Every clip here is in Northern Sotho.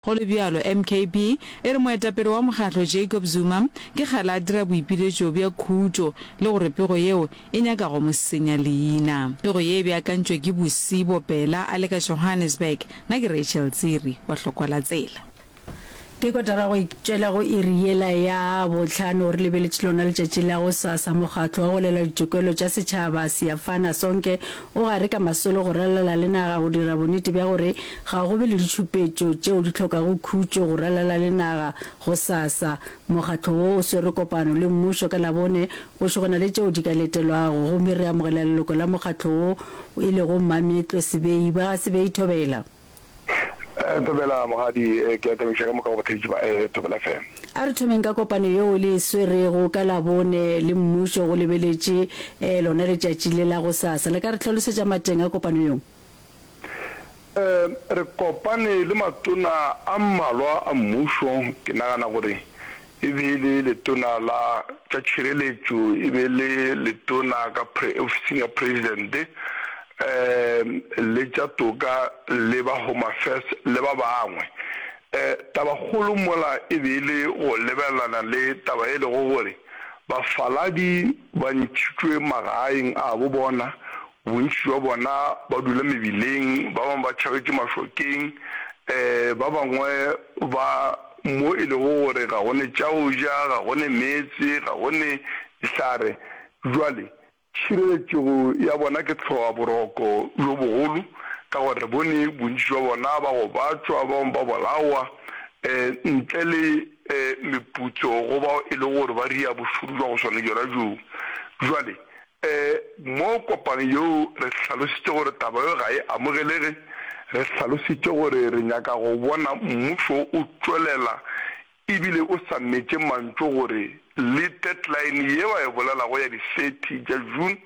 Go le bjalo, MKP e re moetapele wa mokgatlo Jacob Zuma ke kgale a dira boipiletšo bja khutšo le gore pego yeo e nyaka go mo senya leina. Pego ye e beakantšwe ke Busi Bopela a le ka Johannesburg. Na ke Rachel Tsiri wa Hlokolatsela. Ke kotara go tšwela go iri yela ya bohlano re lebeletše lona letšatši la go sasa. Mokgatlo wa go lwela ditokelo tša setšhaba Siyafana Sonke o gare ka masolo go ralala le naga go dira bonnete bja gore Ga go be le ditšhupetšo tšeo di hlokago khutšo go ralala le naga gosasa. Mokgatlo wo o swere kopano le mmušo ka Labone go šo go na le tšeo di ka letelwago gomme re amogela leloko la mokgatlo wo e lego Mmameetlwe Sebei. Ba ga Sebei Thobela. Thobela, Mogadi, ke a thabiša ka moka go batheetši ba Thobela FM. A re thomeng ka kopano yeo le e swerego ka Labone le mmušo go lebeletše lona letšatši le la gosasa. Le ka re hlalosetša mateng a kopano yeo? Re kopane le matona a mmalwa a mmušo, ke nagana gore e be e le letona la tša tšhireletšo, e be e le letona ka ofising ya Presidente, le tša toka le ba Home Affairs le ba bangwe. Taba kgolo mola e be e le go lebelelana le taba e lego gore bafaladi ba ntšhitšwe magaeng abo bona Bontši bja bona ba dula mebileng, ba bangwe ba tšhagetše mašokeng, ba bangwe ba mo e lego gore ga go ne tša go ja, ga go ne meetse, ga go ne dihlare. Bjale, tšhireletšego ya bona ke hloaboroko bjo bogolo, ka gore re bone bontši bja bona ba gobatšwa, ba bangwe ba bolawa, ntle le meputso go bao e lego gore ba ria bošoro bja go swana bjona bjoo. Bjale, Ee, mo kopang yeo re hlalositše gore taba yeo ga e amogelege. Re hlalositše gore re nyaka go bona mmušo o tšwelela ebile o sa metše mantšu gore le deadline ye ba e bolelago ya di thirty tša June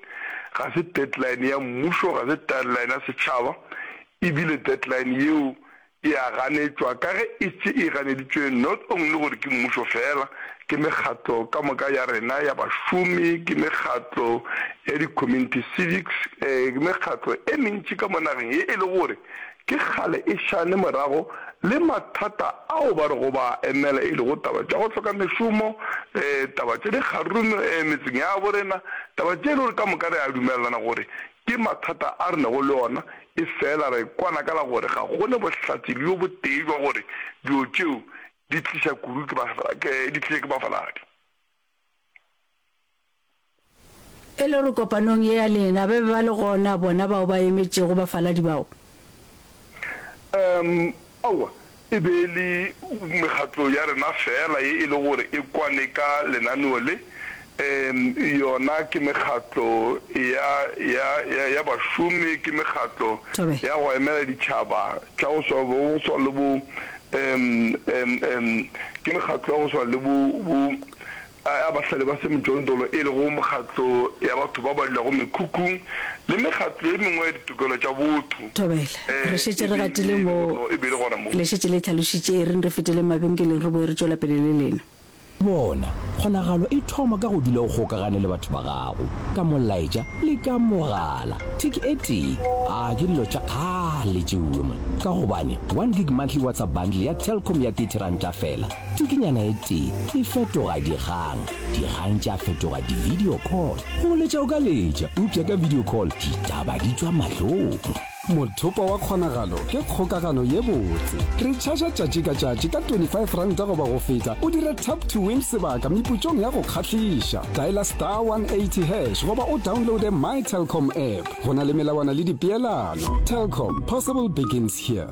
ga se deadline ya mmušo, ga se deadline ya setšhaba ebile deadline yeo e a ganetšwa ka ge e štše e ganeditšwe not only gore ke mmušo feela, ke mekgatlo ka moka ya rena ya bašomi, ke mekgatlo ya di-community civics, ke mekgatlo e mentši ka mo nageng ye e le gore ke kgale e šane morago le mathata ao ba rego ba a emela e lego taba tša go hloka mešomo, taba tša dikgaruru metseng ya bo rena, taba tše e le gore ka moka re a dumelelana gore Ke mathata a re nago le ona, efela re kwana ka la gore ga go ne bohlatse bjo botee bja gore dilo tšeo di tliša kudu ke di tliša ke bafaladi. E le gore kopanong ye ya lena ba be ba le gona bona bao ba emetšego bafaladi bao? Umm, aowa, e be e le mekgatlo ya rena feela ye e le gore e kwane ka lenaneo le. Umm, yona ke mekgatlo ya, ya, ya, ya bašomi, ke mekgatlo Tobe. ya go emela ditšhaba tša go swa, go swana le bo, umm, umm, umm, ke mekgatlo ya go swana le bo, bo, A ba sa le ba se mejondolo e lego mekgatlo ya batho ba ba dulago mekhukhung le mekgatlo ye mengwe ya ditokelo tša botho. Thobel, Re šetše re gatile mo le šetše le hlalošitše. Ereng re feteleng mabenkeleng re boe re tšwela pele le lena. Bona, kgonagalo e thoma ka go dula o kgokagane le batho ba gago, ka molaetša le ka mogala. Thik e tee, a ke dilo tša kgale tšeuwe mona? Ka gobane one gig monthly WhatsApp bundle ya Telkom ya thirty ranta feela. Tukinyana e tee e fetoga dikgang, dikgang tša fetoga di-video call. Go letša o ka letša, eupša ka video call ditaba di tšwa mahlong. Mothopo wa Kgonagalo ke kgokagano ye botse. Re tšhaša tšatši ka tšatši ka 25 ranta goba go feta o dire tap to win sebaka meputšong ya go kgahliša. Dialer star 180 hash goba o downloade my Telkom app. Go na le melawana le dipeelano. Telkom, possible begins here.